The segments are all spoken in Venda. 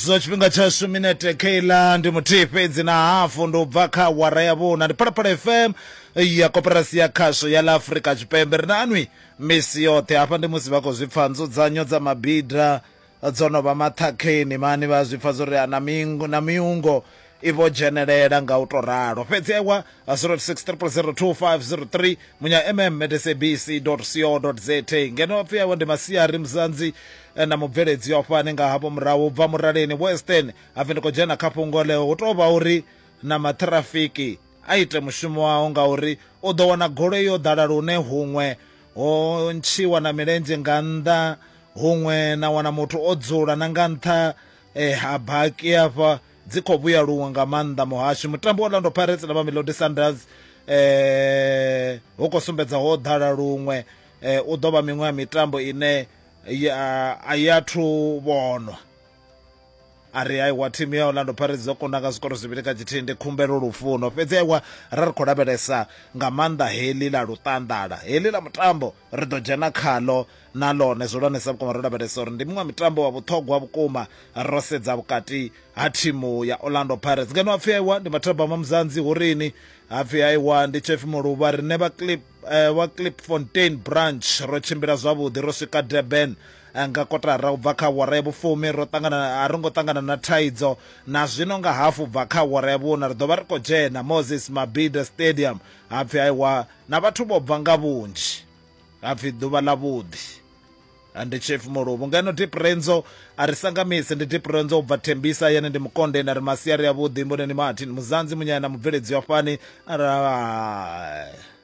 zwa tshifhinga tshashu minete keiḽa ndi muthihi fhedzi na hafu ndi u bva kha awara ya vhuna ndi phalaphala fm ya koperasi ya khasho ya ḽa afurika tshipembe ri na anwi misi yoṱhe hafha ndi musi vha khou zwi pfha nzudzanyo dza mabida dzo no vha maṱhakheni mani vha zwi pfha zwo ri na miungo i vho dzhenelela nga u tou ralo. Fhedzi ewa 06302503 munya mm at sabc co za ngeno apfi awe ndi masiari muzanzi eh, na mubveledzi wa fhani nga havho murahu bva muraleni western hapfi ndi khou dzhena kha fhungo leo hu tou vha uri na maṱhirafiki a ite mushumo wawo ngauri u ḓo wana goloi yo ḓala lune huṅwe ho ntshiwa na milenzhe nga nnḓa huṅwe na wana muthu o dzula na nga nṱha eh, ha baki afha dzi khou vhuya luṅwe nga maanḓa muhasho mutambo wa orlando pirates na mamelodi sundowns eh hu khou sumbedza ho ḓala luṅwe eh u ḓo vha miṅwe ya mitambo ine a i athu vhonwa a ri aiwa thimu ya orlando pirates dzo kunda nga zwikoro zwivhili kha tshithihi ndi khumbelo lufuno fhedzi aiwa ra ri khou lavhelesa nga maanḓa heḽi ḽa luṱanḓala heḽi ḽa mutambo ri ḓo dzhena khaḽo na ḽone zwihulwanesa vhukuma ro lavhelesa uri ndi muṅwe wa mitambo wa vhuṱhogwa vhukuma ro sedza vhukati ha thimu ya orlando pirates ngeno hapfi aiwa ndi mathabama muzanzi hu rini hapfi aiwa ndi chefi muluvha riṋe vha clip eh, wa clip fontain branch ro tshimbila zwavhuḓi ro swika durban eh, nga kotara u bva kha wara ya vhufumi ro ṱangana a ro ngo ṱangana na thaidzo na zwino nga hafu bva kha wara ya vhuna ri ḓo vha ri khou dzhena moses mabida stadium hapfi aiwa Na vhathu vho bva nga vhunzhi. Ha pfi ḓuvha ḽa vhuḓi. Ha ndi Chief Muluvhu. Ngeno Deep Renzo a ri sangamisi. Ndi Deep Renzo u bva Tembisa, yane ndi Mukonde. Na ri masiari avhuḓi. Mboneni Martin Muzanzi, munyaya na mubveledzi wa fhani. A ri, Hai.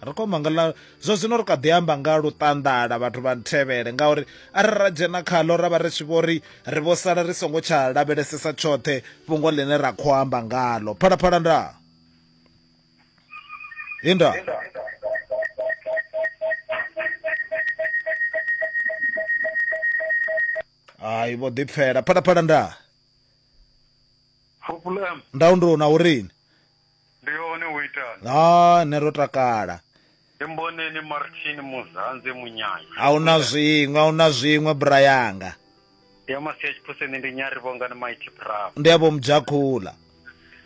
Ri khou manga ḽa zwa zwino ri kha ḓi amba nga luṱanḓala vhathu vha nthevhele ngauri arali ra dzhena khaḽo ra vha ri tshi vho ri ri vho sala ri songo tsha lavhelesesa tshoṱhe fhungo ḽine ra khou amba ngaḽo. Phalaphala ndaa. Linda. Ai vho ḓi pfela phala phala nda. Problem. Nda undro na urini. Ndi yone uitani. Ha nero takala. Ri mboneni Martin Muzanze Munyanya. A hu na zwiṅwe, a hu na zwiṅwe bra yanga. Ndi ya Masia Tshiphuseni, ndi Nyari Vhongani Mighty Bravo. Ndi ya Vho Mudzhakhula.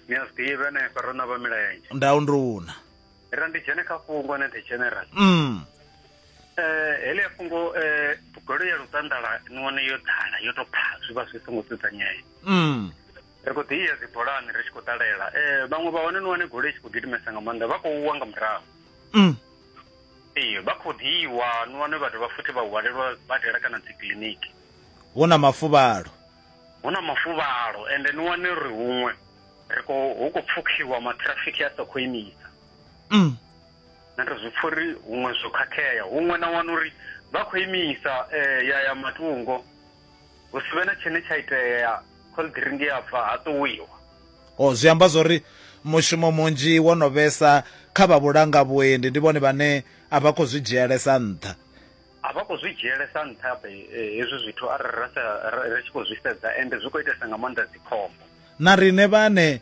Ni a zwi ḓivha henefha ro na vha milenzhe. Ndau ndi una. Ra ndi dzhene kha fhungo na the general. Mm. Eh hele ya fhungo eh goloi ya luṱanḓala ni wane yo ḓala yo to pha zwi vha zwi songo dzudzanyea. Mm. ri khou ḓi iya dzibolani ri tshi khou ṱalela um vhaṅwe vha hone ni wane goloi tshi khou gidimesa nga maanḓa vha khou wa nga murahu mm. ee vha khou ḓi iwa ni wane vha dovha futhi vha hwalelwa badela kana dzi kiliniki hu na mafuvhalo hu na mafuvhalo ende ni wane ri huṅwe ri khou hu khou pfukhiwa matrafiki a sa khou imisa mm. na ri zwi pfha uri huṅwe zwo khakhea huṅwe na wana uri vha khou imisa um ya ya matungo hu si vhe na tshine tsha itea cold drink ya bva ha ṱuwiwa o oh, zwi amba zwori mushumo munzhi wo no vhesa kha vha vhulanga vhuendi ndi vhone vhane a vha khou zwi dzhielesa nṱha a vha khou zwi dzhielesa nṱha eh, hezwi zwithu arali ra sa ri tshi khou zwi sedza ende zwi khou itesa nga maanḓa dzikhombo Na riṋe vhaṋe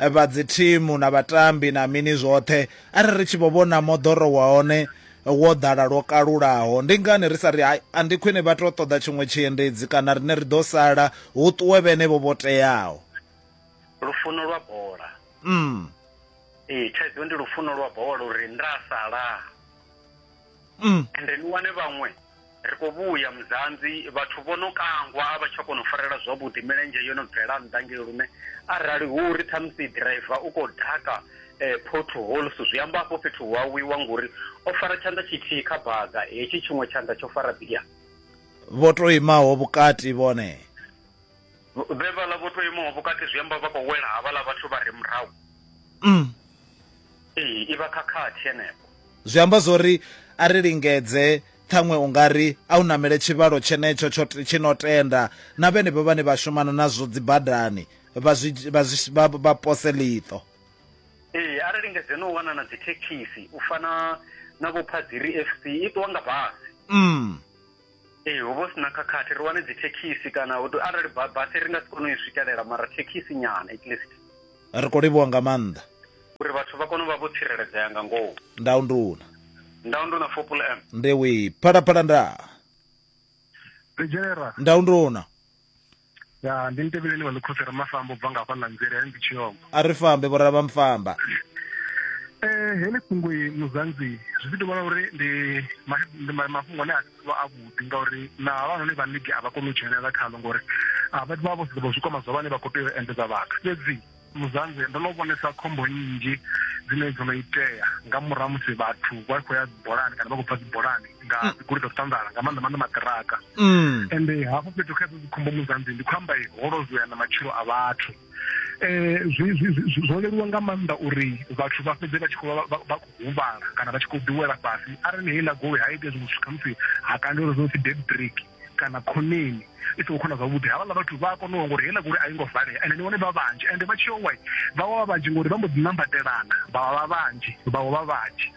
vha dzithimu na vhatambi na mini zwoṱhe a ri ri tshi vho vhona moḓoro wa hone wo ḓala lwo kalulaho, ndi ngani ri sa ri hai, a ndi khwine vha tou ṱoḓa tshiṅwe tshiendedzi kana riṋe ri ḓo sala, hu ṱuwe vhenevho vho teaho. Lufuno lwa bola. Umm. Ee, thaidzo ndi lufuno lwa bola uri nda salaa. mm. ende ni wane vhaṅwe ri khou vhuya muzanzi vhathu vho no kangwa a vha tsha kona u farela zwavhuḓi milenzhe yo no bvela nnḓa ngei lune arali hu ri ṱhamusi driver u khou ḓaka eh, potholes zwi amba afho fhethu hu awiwa ngori o fara tshanḓa tshithihi kha baga hetshi tshiṅwe tshanḓa tsho fara bia vho to imaho vhukati vhone Vhe vhala vho to imaho vhukati zwi amba vha khou wela havhala vhathu vha re murahu mm. ee i vha khakhathi henefho zwi amba zwo ri a ri lingedze ṱhaṅwe u nga ri a u namele tshivhalo tshenetsho tshi no tenda na vhenevho vhane vha shumana nazwo dzibadani vha pose ḽiṱo ee a ri lingedze no u wana na dzithekhisi u fana na vhophadziri f c i ṱuwa nga basi mm. Ee hu vha hu si na khakhathi ri wane dzithekhisi kana arali basi ri nga si kone u i swikelela mara thekhisi nyana at least ri khou livhuwa nga maanḓa uri vhathu vha kone u vha vho tsireledzea nga ngomu ndau nduna ndau nduna fopul m ndewi phalaphala nda ri dzhenera ndau nduna ya ndi ntevheleni wa ḽikhosi ra mafamba u bva nga hafhaḽa nzela ndi tshiyombo a ri fambe vhora vha mfamba eh heḽi fhungo muzanzi zwi ḓi tovha uri ndi ndi mafhungo ane a vha a vhuḓi ngauri na havhanoni vha ligi a vha koni u dzhenelela khalo ngori a vha vha vho zwi kwama zwa vhane vha khou tea u endedza vhathu fhedzi Muzanzhe, ndo no vhonesa khombo nnzhi dzine dzo no itea nga murahu musi vhathu vha khou ya dzibolani kana vha khou bva dzibolani nga mm. dzigoloi dza zwiṱanḓala nga maanḓa maanḓa maṱiraka mm. ende hafho fhethu kha dzikhombo muzanzi ndi khou amba ho lozwea na matshilo a vhathu um zwo leluwa nga maanḓa uri vhathu vha fhedze vha tshi khou vha khou huvhala kana vha tshi khou ḓiwela fhasi arali heiḽa goloi ha ite zwiṅwe zwithu khamusi ha kandelwa zwo pfi dead break kana khoneni i songo khona zwavhuḓi havhaḽa vhathu vha a kona uwa ngori heiḽa gori a i ngo valea ende ni vhone vha vhanzhi ende vha tshi yo wai vha wa vha vhanzhi ngori vha mbo ḓi nambatelana vha vha vha vhanzhi vha wa vha vhanzhi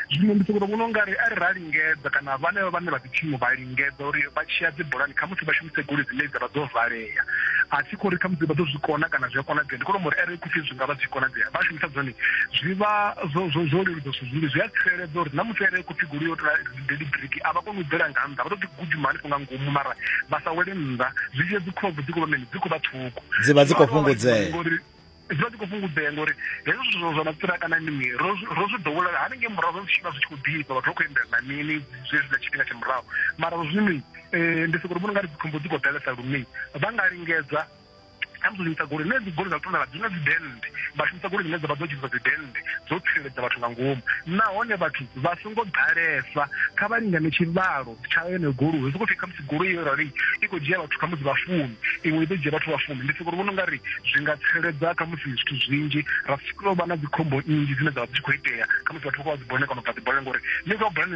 zwino ndi sokoto vhona ungari ari ra lingedza kana vhanevha vhane vha dzithimu vha lingedza uri vha tshiya dzibulani khamusi vha shumise goloi dzine dza vha dzo valea a si khou ri khamusi vha ḓo zwi kona kana zwi a konadzea ndi kone mori are khupfi zwi nga vha zwi konadzea vha shumisa dzone zwi vha zwo leludza zwithu zwinzhi zwi a tsireledza uri na muthu are khupfi goloi yo deliberate a vha koni u bvela nga nnḓa vha to ḓi gudima hanefho nga ngomu mara vha sa wele nnḓa zwi tshia dzi khobvu dzi khou vha mini dzi khou vha ṱhukhu dzi vha dzi khou fhungudzea ngori zwi vha dzi khou fhungudzea ngori hezwo zwithu zwa mapfura kana mini ro zwi ḓowela hanengei murahu zwa zwitshivha zwi tshi khou ḓifha vhathu vha khou endela na mini zwezwi na tshifhinga tsha murahu mara zwino um ndi sokori vhona nga ri dzikhombo dzi khou ḓalesa lune vha nga lingedza khamusi u shumisa goloi nṋe goloi dza luṱanda la dzina dzidennde vha shumisa goloi dzine dza vha dzo dzhenisa dzidennde dzo tsireledza vhathu nga ngomu nahone vhathu vha songo ḓalesa kha vha lingane tshivhalo tsha yeneyo goloi ri sokou pfhi khamusi goloi yo rali i khou dzhia vhathu khamusi vha fumi iṅwe i ḓo dzhia vhathu vha fumi ndi soko ri vhona ungari zwi nga tsireledza khamusi zwithu zwinzhi ra sikulo vha na dzikhombo nnzhi dzine dza vha dzi tshi khou itea khamusi vhathu vha khou vha dzibone kana u bva dzibone ngori ni khou bone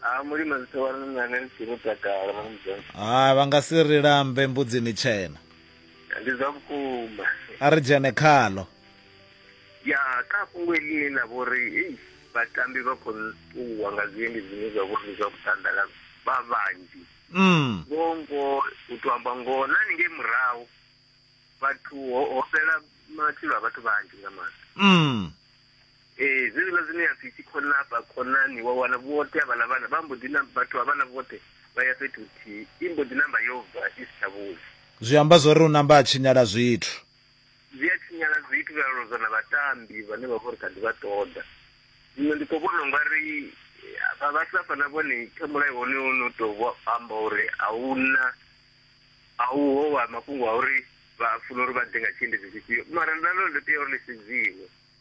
ha mulima zwi tovha ni nane ni si mutakalo mwana mudzonzi ha vha nga si ri lambe mbudzini tshena ndi zwa vhukuma a ri dzhene khalo ya kha fhungo eḽine ḽa vho ri ei vhatambi vha khou ṱuwa nga zwiendi zwine zwa vho ri zwa vhuṱandala vha vhanzhi mm. ngoho ngoho u to amba ngoho na ningei murahu vhathu ho ho fhela matshilo a vhathu vhanzhi nga maanḓa mm. Ee, zwenezwiḽa zwine ya pfi tshikholaba, khonani, wa wana vhoṱhe havhaḽa vhana vha mbo ḓi na, vhathu havhaḽa vhoṱhe vha ya fhethu huthihi, i mbo ḓi namba yo bva i si tsha vhuya. Zwi amba zwo ri u namba a tshinyala zwithu. Zwi a tshinyala zwithu zwa lozwa na vhatambi vhane vha vha uri kha ḓi vha ṱoḓa. Zwino ndi khou vhona u nga ri vha vha Safa na vhone kha mulayo wonoyo wo no tou vho amba uri a hu na, a hu ho wa mafhungo a uri vha funa uri vha ḓe nga tshiendedzi tshifhio mara na ḽone ḽo tea uri ḽi sedziwe.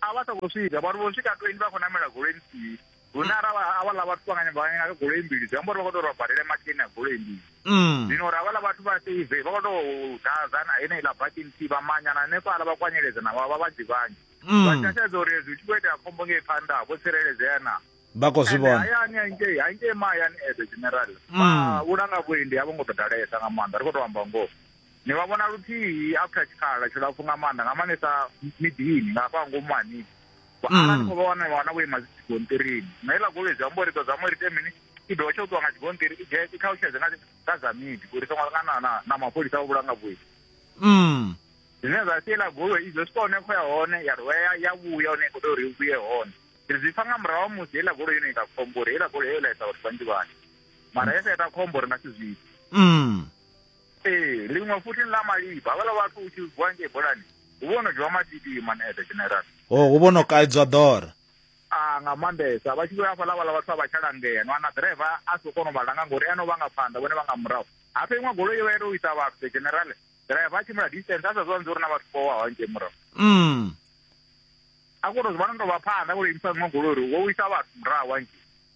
a vha sa khou swika vhathu vho swika tweni vha khou namela goloi nthihi hune ara avhaḽa vhathu vha nga nyamba vha nyanga goloi mbili zwi amba uri vha khou tou ri badele makeni a goloi mbili mm. zwino uri avhaḽa vhathu vha save vha khou tou dazana heneiḽa baki nthihi vha manyana hanefhaḽa vha kwanyeledza na vha vhanzhi vhanzhi mm. vha tshasedza uri hezwi tshi khou itea khombo ngei phanḓa vho tsireledzea na vha khou zwi vhona hayani hangei hangei mahayani edo general mm. vhulanga vhuendi a vho ngo ḓo dalesa nga maanḓa ri khou tou amba ngoho Ni vha vhona luthihi after tshikhala tshilapfu nga maanḓa nga maanḓesa miḓini nga hafha ngomu ha miḓi ara ni khou vha wana wana vho ima dzi tshigontirini na iḽa goloi zwi amba uri ḓo zama uri ite mini i dovha tsha u ṱuwa nga tshigonṱiri i dzhie i ṱhalutshedze nga nga dza midi uri songo nga na na na mapholisa vha vhulanga vhuyi zwine zwa sia iḽa goloi izwo swika hone khou ya hone ya dovha ya ya vhuya hone i khou tea uri i vhuye hone ri zwi pfa nga murahu ha musi heiḽa goloi yone ita khombo uri heiḽa goloi yo laisa vhathu vhanzhi vhanzhi mara yo sa ita khombo ri nga si zwi ite Ee, ḽiṅwe futhi ni ḽa malifha. Havhaḽa vhathu u tshi vuwa ngei bolani, hu vho no dzhiwa matiti man at the general. O, Oh, hu vho no kaidzwa ḓora. A nga maanḓesa vha tshi vhuya hafhaḽa vhaḽa vhathu a vha tsha langea ni wana ḓiraiva a si kona u vha langa ngori ene u vha nga phanḓa vhone vha nga murahu hafha iṅwe goloi yo vha ita u isa vhathu the general ḓiraiva a tshimbila distance a sa zwanzi uri na vhathu vho waho ngei murahu Mm. a kona u zwi vhona ndo vha phanḓa vho imisa iṅwe goloi uri wo wisa vhathu murahu hangei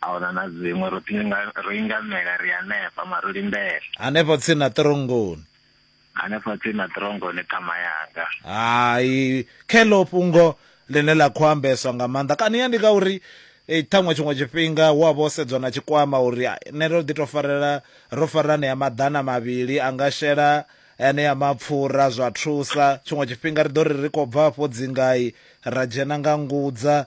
ahuna na dziṅwe ro ḓinga ro ingamela ri hanefha mara ro lindela hanefho tsini na ṱirongoni hanefho tsini na ṱirongoni ṱhama yanga hai khelo fhungo ḽine ḽa khou ambeswa nga maanḓa kana ya ndi ka uri eh, ṱhaṅwe tshiṅwe tshifhinga hu a vha o sedzwa na tshikwama uri ah, nṋe ro ḓi to farela ro farela anea maḓana mavhili a nga shela anea mapfura zwa thusa tshiṅwe tshifhinga ri ḓo ri ri khou bva afho dzingai ra dzhena nga ngudza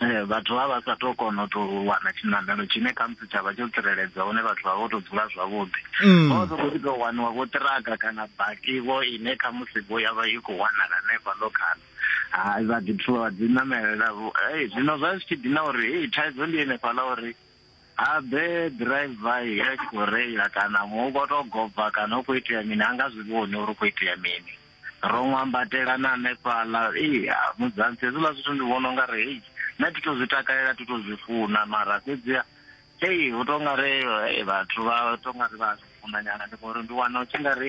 Eh, vhathu vha vha sa to kona u to wana tshiṋamelo tshine khamusi tsha vha tsho tsireledzea hune vhathu vha vho to dzula zwavhuḓi mm. vha sokou ḓi tou waniwa vho ṱiraka kana bakivo ine khamusi vho ya vha i khou wanala hanefha ḽo khana hai vha ḓi thuwa vha dzi namelela ei zwino zwa zwi tshi ḓi na uri ei thaidzo ndi henefhaḽa uri Habe driver i a tshi khou reila kana muṅwe u khou tou goba kana hu khou itea mini a nga zwi vhoni uri hu khou itea mini ro ṅwambatela na hanefhaḽa ee ha, mudzansi hezwiḽa zwithu ndi vhona unga ri hei nṋe thi to zwi takalela thi to zwi funa mara fhedziha hei hu to nga ri eh, vhathu vha to nga ri vha a zwi funa nyana ndi ngori ndi wana u tshi nga ri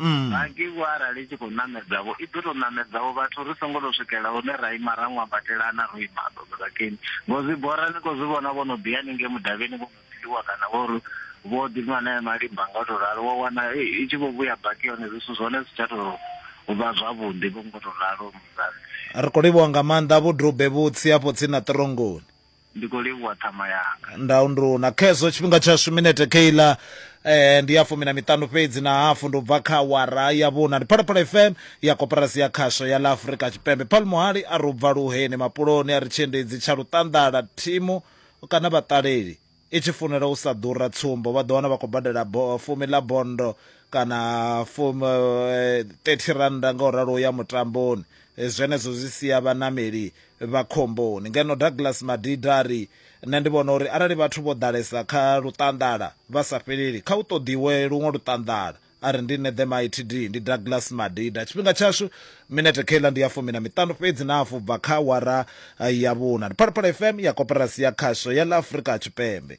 Mm. Hangei vho arali i tshi khou ṋamedza vho i ḓo tou ṋamedza vho vhathu ri songo tou swikela hune ra ima ra ṅwambatelana ro ima ḓoḓorakeni ngo zwi bora ni khou zwi vhona vho no ḓi haningei mudavhini vho no ḓiwa kana vho ri vho ḓi nwa nae malimba nga u tou ralo wa wana i i tshi vho vhuya baki hone zwithu zwone zwi tsha tou vha zwavhuḓi vho ngo tou ralo muzansi Ri khou livhuwa nga maanḓa vhudube vhutsi afho tsini na Ṱorongoni. ndi khou livhuwa ṱhama yanga ndau ndu na khezwo tshifhinga tshashu minete keiḽa eh ndi ya fumi na miṱanu fhedzi na hafu ndo bva kha wara ya vhuna ndi phalaphala fm ya koporasi ya khasho ya ḽa afurika tshipembe paul muhali a ro bva luheni mapuloni a ri tshiendedzi tsha luṱanḓala thimu kana vhaṱaleli i tshi funela u sa ḓura tsumbo vha ḓo wana vha khou badela fumi ḽa bondo kana fumi 30 eh, rannda nga u ralo ya mutamboni eh, zwenezwo zwi sia vhanameli vha khomboni. Ngeno Douglas Madida a ri, Nṋe ndi vhona uri arali vhathu vho ḓalesa kha luṱanḓala vha sa fheleli, kha hu ṱoḓiwe luṅwe luṱanḓala. A ri, Ndi nṋe The Mighty Dee, ndi Douglas Madida. Tshifhinga tshashu minete kheiḽa ndi ya fumi na miṱanu fhedzi na hafu u bva kha awara ya vhuṋa. Ndi Phalaphala FM ya Koporasi ya Khasho ya ḽa Afrika Tshipembe.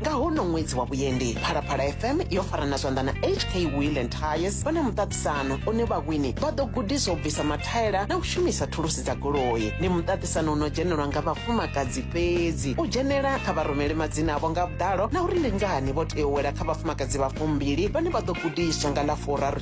nga hono ṅwedzi wa vhuendi phalaphala fm yo farana zwanḓa na hk wheel and tires vha na muṱaṱisano une vhawini vha ḓo gudiswa u bvisa mathaela na u shumisa thulusi dza goloi ndi muṱaṱisano uno dzhenelwa nga vhafumakadzi fhedzi u dzhenela kha vha rumele madzina avho nga vhuḓalo na uri ndi ngani vho tea u wela kha vhafumakadzi vha fumbili vhane vha ḓo gudiswa nga ḽa furaru